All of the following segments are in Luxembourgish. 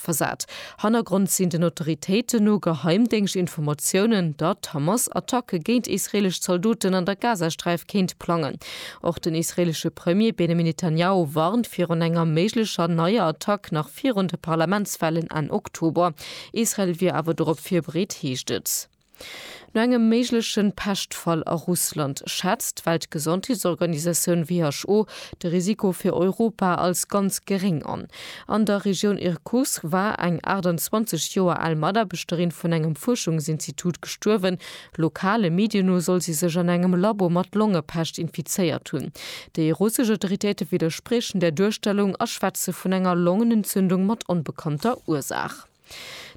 versat. Hannergrond sinn den Autoritéiten no Geheimdéngschtinformatiounen, datt Hamas Attacke géint israeelesch Zaldoten an der Gazasträif kéint plangen. Och den israeelesche Premier Benjamin Netanjahu warnt virun enger méiglecher neier Attack nach virun de Parlamentswahlen Enn Oktober. Israel wier awer dorop virbereet, heescht et. No engem méigleche Peschtfall a Russland schätzt d'Weltgesondheetsorganisatioun who de Risiko fir Europa als ganz geréng an. An der Regioun Irkutsk war eng 28 Joer al Mataarbechterin vun engem Fuerschungsinstitut gestuerwen. Lokale Medien no soll si sech an engem Labo mat Longepescht infizéiert hunn. Déi russesch Autoritéite widderspriechen där Duerstellung a schwätze vun enger Longenentzündung mat onbekannter Ursaach.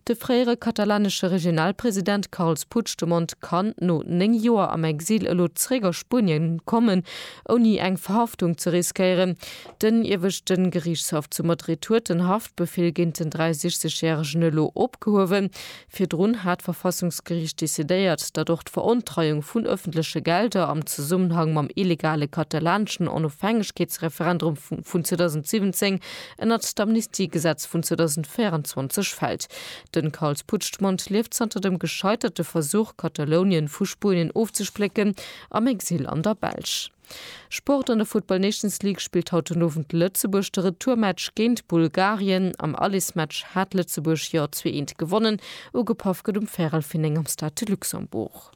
De fréiere katalanesche Regionalpresident Carles Puigdemont kann no 9 Joer am Exil elo zeréck a Spunien kommen, ouni eng Verhaftung ze riskéieren. Den ieweschte Geriichtshaff zu Madrid huet den Haftbefeel géint den 63 järegen elo opgehuewen. Virdrun hat d'Verfassungsgeriicht decidéiert, datt och d'Verontreiung vun ëffentleche Gelder am Zesummenhang mam illegale katalaneschen Onofhängegkeetsreferendrum vun 2017 ënnert d'Amnistiegesetz vun 2024 fält. Den Carles Puigdemont lieft zanter dem gescheiterte Versuch, Katalounien vu Spuenien ofzesplécken, am Exil an der Belsch. Sport, An der Football Nations League spillt haut den Owend Lëtzebuerg de Retourmatch géint Bulgarien. Am Allesmatch hat Lëtzebuerg jo 2 Eent gewonnen. Ugepaff gëtt um Färel Finneng am Stade de Luxembourg.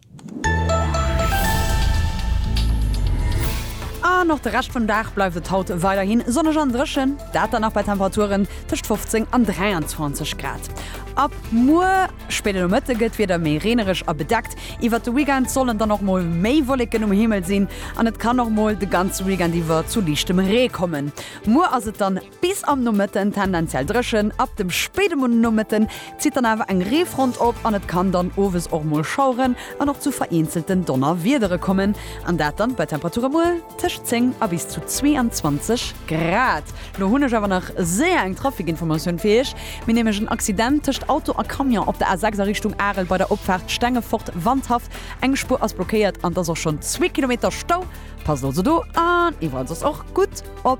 An och de Rescht vum Dag bleift et haut weiderhi sonneg an dréchen, dat dann nach bei Temperaturen tëscht 15 an 23 Grad. Ab muer spéiden Nomëtte gëtt d'Wieder méi reenereg a bedeckt. Iwwert de Weekend sollen dann och mol méi Wolleken um Himmel sinn an et kann och mol de ganze Weekend iwwer zu liichtem Ree kommen. Muer ass et dann. Bis am Nomëtten tendenziell dréchen, ab dem spéide Nomëtten zitt dann awer eng Reefront op an et kann dann owes och mol schaueren an och zu vereenzelten Donnerwiedere kommen an dat dann bei Temperature mol tëscht 10 a bis zu 22 Grad. Lo hunn ech awer nach séier eng Trafikinformatioun fir iech. Mir nämlech en Accident tëscht Auto a Camion op der A6 a Richtung Arel bei der Opfaart Stengefort-Wandhaff. Eng Spuer ass blockéiert an et ass och schonn zwee Kilometer Stau. Passt also do an iwwerall soss och gutt op.